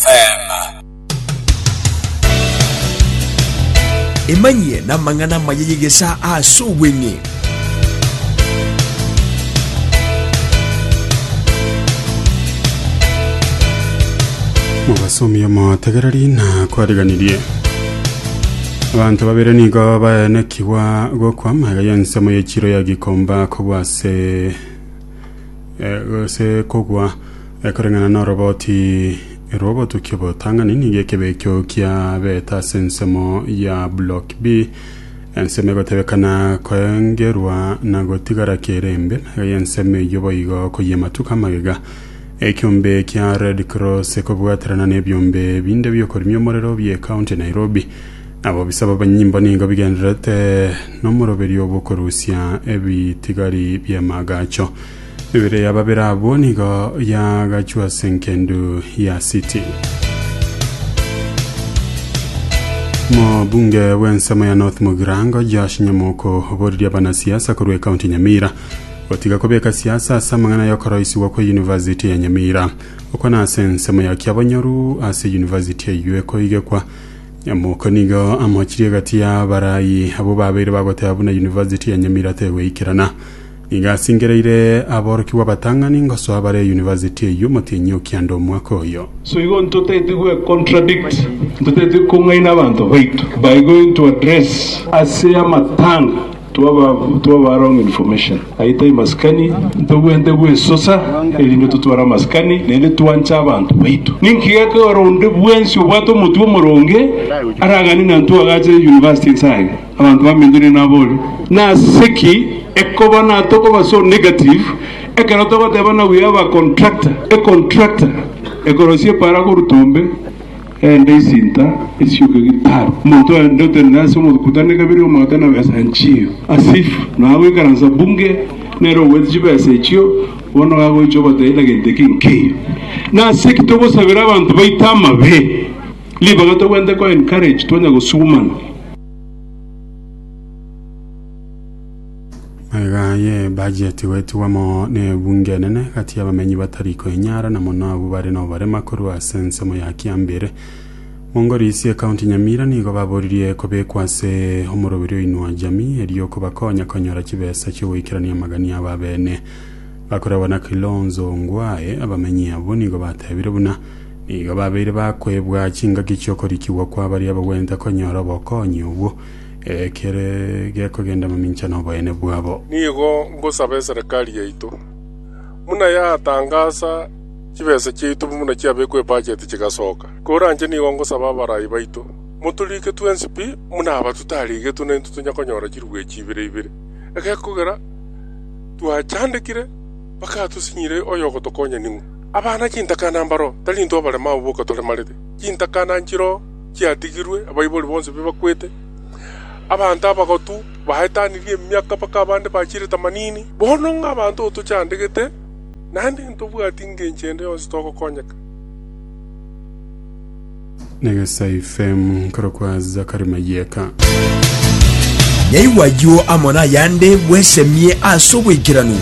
Selah. Emanyie namang'ana amaya y'egesaa ase obweng'e. Obasomi omotegereri na kwariganirie abanto babere nigo baenekigwa gokwama iga y'ensemo y'echiro ya gikomba kogwa ase eh, ase kogwa Ekoreng'ana noroboti rw'obotukia obotang'ani nigo ekebe ekio kia beta ase ensemo ya Block B. Ensemo egotebekana koengerwa na gotigara kere embe y'ensemo eyio boigo koyia amatuko amagega. Ekiombe kia Red Cross ekobwaterana n'ebiombe binde biokorimia omorero bie County Nairobi. Abobisa b'abanyimbo nigo bigendererete nomoroberio bw'okorusia ebitigari bi'amagacho. Ebere ya babere abwo nigo yagachwa ase engendu ya City. Mobunge bw'ensemo ya North Mugirango Josh Nyamoko oboririe abanasiasa korwa ekaunti Nyamira gotiga kobeka siasa ase amang'ana y'okoroisigwa kwa University ya Nyamira. Okwo nase ensemo ya Kiabonyoru ase University eyio ekoigekwa. Nyamoko nigo amochirie egati y'abarayi abwo babeire bagoteba buna University ya Nyamira tegweikerana. Nigo asingereire aborokigwa abatang'ani ngosoa bare university eyio omotienyi o kianda omwaka oyo. So igo ntotaeti gwe contradict, ntotaeti kong'aina abanto baito by going to address. Ase amatanga twaba twaba wrong information aye tai masikani, ntobwenerete gwesosa erinde totware amasikani naende twanche abanto baito. Ninki gekogera onde bwensi obwate omotwe omoronge aragane nantwe agachire university inse aye? Abanto bamintonie nabori, Nase ki ekoba natokobaa so negative ekero togoteba na we have a contractor? A contractor ekorosia epara koruta ombe ende isinta esioka gitaru. Omonto ende otenene ase omokutano ekabere omogote na besa nchio as if nonya goikaransa bunge nere ogoete chibesa echio bono iga agoicha ogoteba na gento eke nkeiyo. Nase ki togosabera abanto baito amabe? Ribaga togwenerete ko encourage twanya gosugumana. Maiga ye budget gwetigwa moo ne ebunge enene gati y'abamenyi batari koenyara na mono abwo bare noborema korwa ase ensemo ya kiambere Mongo Riisi ecounty Nyamira nigo baboririe kobekwa ase omoroberi oinwa jamii erio kobakonya konyora chibesa chiogoikerania amagania abo abene bakoragwa na Kilonzo Ongwae abamenyi abwo nigo batebire buna Nigo babeire bakwebwa chingaki chi'okorikigwa kwa baria bagwenerete konyora obokonyi obwo, ekere gekogenda mamincha noboyene bwabo. Nigo ngosaba eserekari yaito, buna yatangasa chibesa chiaito buna chiabekwa ebacheti chigasoka. Koranche nigo ngosaba abarai baito, motoriike twensi pi, buna aba totarigetwe naintwe tonya konyora chiruechi ibere ibere, egekogera twachandekire bakatosinyire oyogotokonya ning'o. Abana chintakana mbaro, tari intwe abarema abo boka toremarete. Chintakana nchiro chiatigirwe, abaibori bonsi bibakwete, abanto abagotu baetanirie emiaka mpaka abande bachire tamanini. Bono ng'a abanto otochandegete, naende ntobwati ngencho ende yonsi togokonyeka. Negesaifemu nkorokwa Zakari Mayeka. Naigwa ayio amo nayande bwesemie ase obwaikeranu.